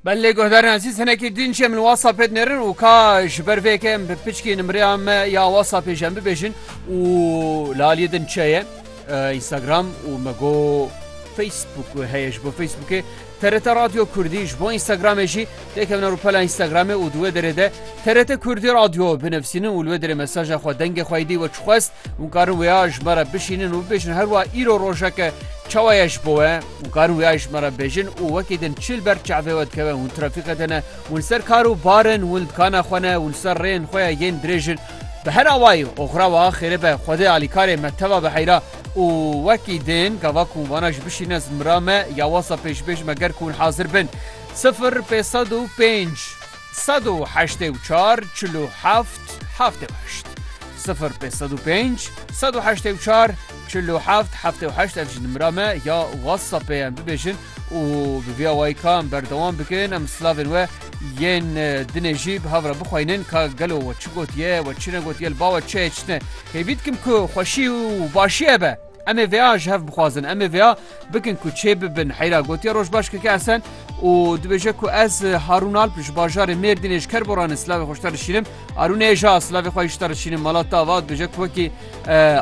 Belê guhdarên ezîz hinekî din jê min WhatsApp pê dinerin û ka ji ber vê yekê em bi piçkî nimreya me ya WhatsAppê jî em bibêjin û li aliyê din çi ye Instagram û me go Facebook heye ji bo Facebookê TRT Radyo Kurdî ji bo Instagramê jî têkevne rûpela Instagramê û di wê derê de TRT Kurdî Radyo binivîsînin û li wê derê mesaja xwe dengê xwe dî we çixwest hûn karin wêya ji me re bişînin û bibêjin herwa îro rojeke çawa ye ji bo we Hûn karin wî ayîş me re bêjin û wekî din çi li ber çavê we dikeve hûn trafîkê de ne, hûn li ser kar û bar in, hûn li dikana xwe ne, hûn li ser rêyên xwe ye yên dirêj in. Bi her awayî oxira wiha xêrê be Xwedê alîkarê me teva biheyra û wekî din gava ku hûn vana ji bişîne zimira me ya wasa pêşbêj me ger ku hûn hazir bin sifir pêz sed û pênc. Sed û heştê û çar çil û heft heftê û heşt sifir pê sed û pênc sed û heştê û çar çil û heft heftê û heşt ev jî nimira me ya whatsappê em bibêjin û bi vîya wayî ka em berdewam bikin em silavên we yên dinê jî bi hev re bixweynin ka gelo we çi gotiye we çi negotiye li ba we çi ye çi ne hêvî dikim ku xweşî û başî hebe. Em ê vêa ji hev bixwazin, em ê vêa bikin ku çê bibin heyra gotiye Rojbaş KK Esen û dibêje ku ez Harûn Alp ji bajarê Mêrdînê ji Kerboranê silavê xwe ji te dişînim. Arûnê hê ja silavê xwe ji te dişînim mala te ava dibêje ku wekî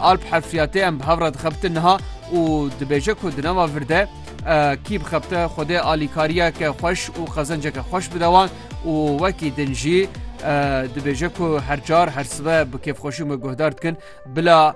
Alp hefriyatê em bi hev re dixebitin niha û dibêje ku di nava vir de kî bixebite Xwedê alîkariyeke xweş û xezenceke xweş bide wan û wekî din jî dibêje ku her car her sibe bi kêfxweşî me guhdar dikin bila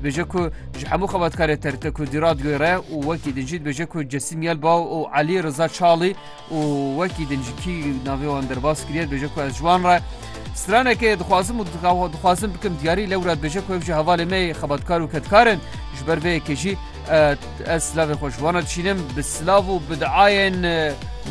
Dibêje ku ji hemû xebatkarê TRT Kurdî Radyoyê re û wekî din jî dibêje ku Cesîm Yelbaw û Elî Riza Çalî û wekî din ji kî navê wan derbas kiriye dibêje ku ez ji wan re stranekê dixwazim û dixwazim bikim diyarî lewra dibêje ku ev jî hevalê me yê xebatkar û kedkarin ji ber vê yekê jî ez silavê xwe ji wan re dişînim bi silav û bi diayên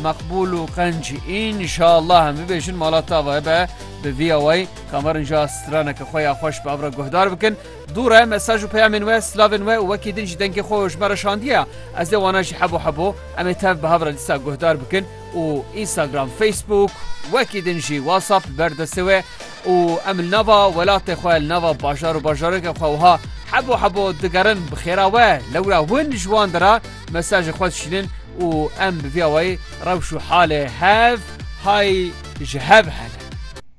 meqbûl û qenc înşallah em bibêjin malata ava hebe bi vî awayî Kamarin jî a straneke xwe ya xweş bi ev re guhdar bikin, Dû re mesaj û peyamên we, slavên we û wekî din jî dengê xwe ji me re şandiye. Ez dê wana jî hebo hebo em ê tev bi hev re dîsa guhdar bikin û Instagram, Facebook wekî din jî WhatsApp li ber destê we û em li nava welatê xwe, li nava bajar û bajarokê xwe wiha hebo hebo digerin bi xêra we. Lewra hûn ji wan de re mesajê xwe dişînin û em bi vî awayî rewş û halê hev hay ji hev hene.